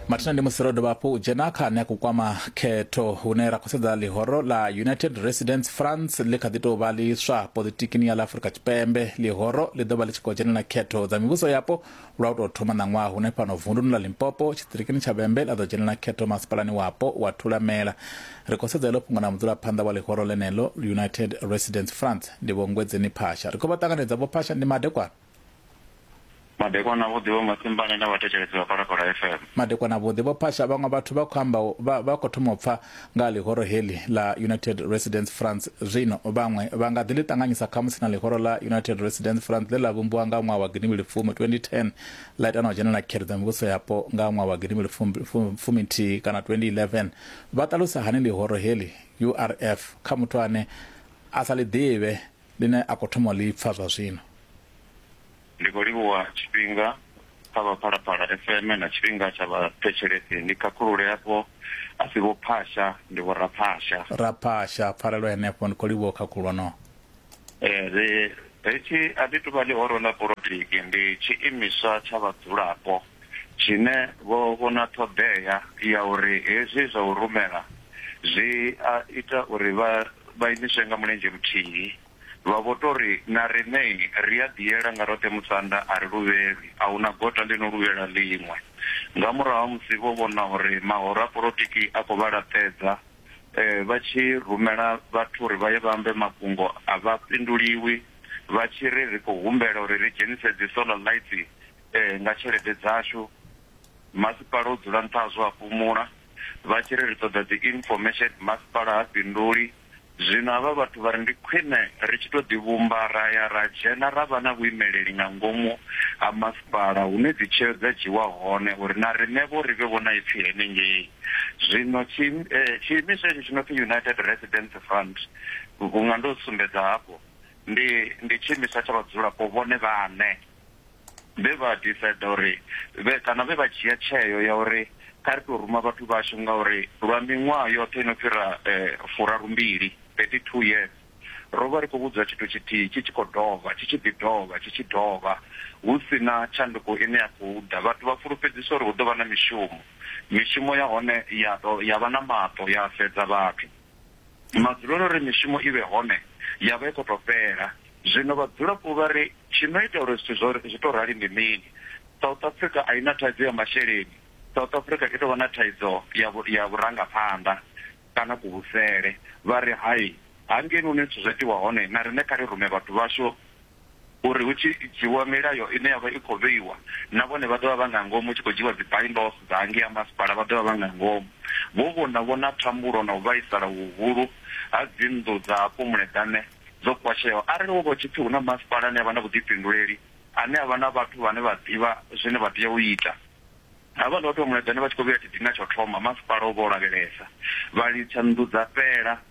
mathina ndi musi ro dovha hafhu u dzhena kha ane a khou kwama khetho hune ra khou sedza ḽihoro ḽa united residence france ḽi kha ḓi tou vha ḽiswa politikini ya ḽa afurika tshipembe ḽihoro ḽi ḓo vha ḽi tshi khou dzhenela khetho dza mivhuso yapo lwa u tou thoma ṋaṅwaha hune fhano vunduni ḽa limpopo tshiṱirikini tsha vhembe ḽa ḓo dzhenela khetho masipalani wapo wa thulamela ri khou sedza iḽo fhungo na mudzulaphanḓa wa ḽihoro ḽeneḽo united residence france ndi vho ngwedzeni phasha ri khou vha ṱanganedza vho phasha ndi madekwana Madekwana vhuḓi vho Masimbane na vhathetshelesi vha Phalaphala FM. Madekwana vhuḓi vho Phasha, vhaṅwe vhathu vha khou amba vha vha khou thoma u pfa nga ha ḽihoro heḽi ḽa United Residents France zwino. Vhaṅwe vha nga ḓi ḽi ṱanganyisa khamusi na ḽihoro ḽa United Residents France ḽe ḽa vhumbiwa nga ṅwaha wa gidi mbili fumi, 2010, ḽa ita na u dzhenela khethedzo ya mivhuso yapo nga ṅwaha wa gidi mbili fumi, fumi nthihi kana 2011. Vha ṱalusa hani ḽihoro heḽi, URF, kha muthu ane a sa ḽi ḓivhe Ḽine a khou thoma u ḽi pfa zwa zwino. Ndi khou livhuwa tshifhinga kha vha Phalaphala FM na tshifhinga tsha vhathetshelesi. Ni khakhulule afho, a si Vho Phasha, ndi Vho Raphasha. Raphasha, pfarelo henefho, ndi khou livhuwa u khakhulwa no. Ri, hetshi a ḽi tou vha ḽihoro ḽa polotiki, ndi tshiimiswa tsha vhadzulapo. tshine vho vhona ṱhoḓea ya uri hezwi zwa u rumela zwi a ita uri vha vha imiswe nga mulenzhe muthihi, vha vho tou ri, Na riṋei ri a ḓiela nga roṱhe musanda, a ri luvhelwi, a hu na gota ḽi no luvhela ḽiṅwe. Nga murahu ha musi vho vhona uri mahoro a polotiki a khou vha laṱedza, vha tshi rumela vhathu uri vha ye vha ambe mafhungo a vha fhinduliwi vha tshi ri, Ri khou humbela uri ri dzhenise dzi solar lights Ee, nga tshelede dzashu. Masipala u dzula nṱha hazwo a fhumula. Vha tshi ri ri ṱoḓa dzi information, masipala ha fhinduli. Zwino havha vhathu vha ri ndi khwine ri tshi tou ḓivhumba ra ya ra dzhena ra vha na vhuimeleli nga ngomu ha masipala hune dzi tsheo dza dzhiiwa hone uri na riṋevho ri vhe vho na ipfi henengei. Zwino tshi, tshiimiswa hetshi tshi no pfi United Residents Front, vhunga ndo sumbedza hafho, ndi, ndi tshiimiswa tsha vhadzulapo vhone vhaṋe. vhe vha decide uri vhe kana vhe vha dzhia tsheo ya uri kha ri tou ruma vhathu vhashu ngauri lwa miṅwaha yoṱhe ino fhira furarumbili 32 years ro vha ri khou vhudzwa tshithu tshithihi tshi tshi khou dovha tshi tshi ḓi dovha tshi tshi dovha hu si na tshanduko ine ya khou ḓa vhathu vha fulufhedziswa uri hu ḓo vha na mishumo mishumo ya hone ya to ya vha na maṱo ya sedza vhathu Ndi madzulelo uri mishumo i vhe hone ya vha i khou tou fhela. Zwino vhadzulapo vha ri, Tshi no ita uri zwithu zwo zwi tou rali ndi mini? South Africa a i na thaidzo ya masheleni. South Africa i tou vha na thaidzo ya ya vhurangaphanḓa kana kuvhusele. Vha ri, Hai, hangei hune zwithu zwa itiwa hone na riṋe kha ri rume vhathu vhashu. uri hu tshi dzhiwa milayo ine ya vha i khou vheiwa, na vhone vha ḓo vha vha nga ngomu, hu tshi khou dzhiwa dzi bylaws dza hangei ha masipala vha ḓo vha vha nga ngomu. Vho vhona vho na thambulo na u vhaisala huhulu ha dzinnḓu dza hafho Muleḓane dzo pwasheaho. Arali ho vha hu tshi pfi hu na masipala ane a vha na vhuḓifhinduleli, ane a vha na vhathu vhane vha ḓivha zwine vha tea u ita, havhaḽa vhathu vha Muleḓane vha tshi khou vhuya tshidina tsha u thoma, masipala o vha o lavhelesa, vha litsha nnḓu dza fhela.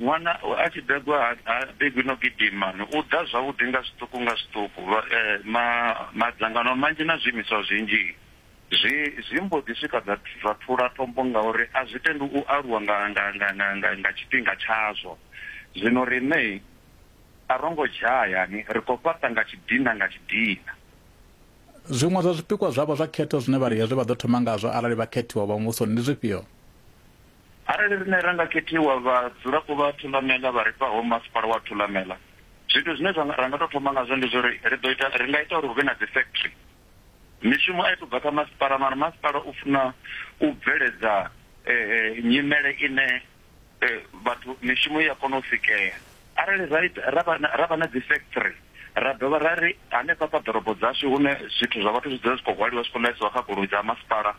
Ṅwana a tshi begwa ha ha begwi no gidima, u ḓa zwavhuḓi nga zwiṱuku nga zwiṱuku. Vha, ma, madzangano manzhi na zwiimiswa zwinzhi zwi, zwi mbo ḓi swika zwa, zwa thula tombo ngauri a zwi tendi u aluwa nga, nga, nga, nga, nga, nga tshifhinga tshazwo. Zwino riṋe a ro ngo dzhaya, ni, ri khou fhaṱa nga tshidina nga tshidina. Zwiṅwe zwa zwipikwa zwavho zwa khetho zwine vha ri hezwi vha ḓo thoma ngazwo arali vha khethiwa u vha Muvhusoni ndi zwifhio? Arali riṋe ra nga khethiwa, vhadzulapo vha Thulamela vha ri fhaho masipala wa Thulamela, zwithu zwine zwa nga, ra nga tou thoma ngazwo ndi zwa uri ri ḓo ita, ri nga ita uri hu vhe na dzi factory. Mishumo a i tou bva kha masipala, mara masipala u funa u bveledza nyimele ine vhathu mishumo i ya kona u sikea. Arali ra ita, ra vha na, ra vha na dzi factory, ra dovha ra ri hanefha kha ḓorobo dzashu hune zwithu zwa vhathu zwi dzula zwi khou hwaliwa zwi khou ḽaisiwa kha goloi dza masipala,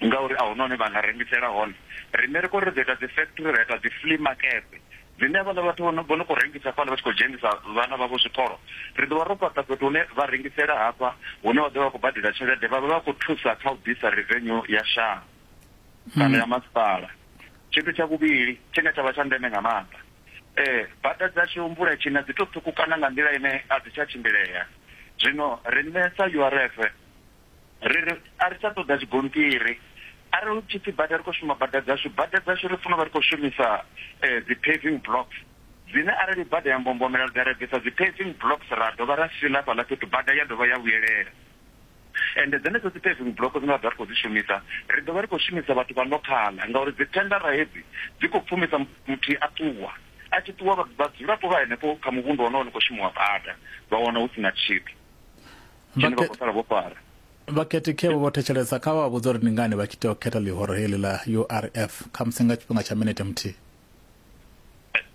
ngauri a hu na hune vha nga rengisela hone. Riṋe ri khou ri ri ḓo ita dzi factory, ra ita dzi flea makete dzine havhaḽa vhathu vho no vho no khou rengisa fhaḽa vha tshi khou dzhenisa vhana vhavho zwikolo, ri ḓo vha ro fhaṱa fhethu hune vha rengisela hafha hune vha ḓo vha vha khou badela tshelede, vha vha vha khou thusa kha u ḓisa revenue ya shango kana ya masipala. Tshithu tsha vhuvhili tshine tsha vha tsha ndeme nga maanḓa, bada dzashu mvula i tshi na dzi tou ṱhukhukana nga nḓila ine a dzi tsha tshimbilea, zwino riṋe sa URF, Ri ri a ri tsha ṱoḓa zwigonṱiri. Arali hu tshi pfi bada ri khou shuma bada dzashu, bada dzashu ri funa u vha ri khou shumisa dzi paving blocks dzine arali bada ya mbombomela ri ḓa ra bvisa dzi paving blocks ra dovha ra fila hafhaḽa fhethu bada ya dovha ya vhuyelela. Ende dzenedzo dzi paving block dzine ra ḓo vha ri khou dzi shumisa ri ḓo vha ri khou shumisa vhathu vha ḽokhaḽa ngauri dzi thendara hedzi dzi khou pfumisa muthihi a ṱuwa. A tshi ṱuwa vhadzulapo vha henefho kha muvhundu wonowo ni khou shumiwa bada vha wana hu si na tshithu. tshine vha khou sala vho fara vhakhethekhevho vho thetshelesa kha vha vhudza uri ndi ngani vha tshi tea u khetha ḽihoro heḽi ḽa urf khamusi nga tshifhinga tsha minete muthihi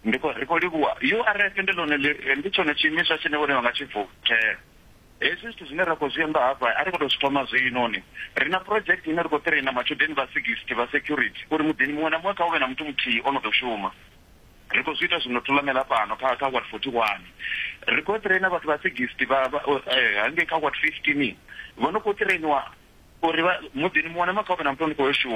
ndi khou ri khou livhuwa urf ndi ḽone ndi tshone tshiimiswa tshine vhone vha nga tshi vuthela hezwi zwithu zwine ra khou zwi amba hafha a ri khou tou zwi thoma zwinoni ri na project ine ri khou traina matshudeni vha sixty vha security uri muḓini muṅwe na muṅwe kha u vhe na muthu muthihi o no ḓo shuma Ri khou zwi ita zwino Thulamela fhano kha kha ward 41. Ri khou ṱireina vhathu vha 60 vha hangei kha ward 15 vho no khou ṱireiniwa uri vha muḓini muṅwe na muṅwe kha hu vhe na muthu ane khou yo shuma.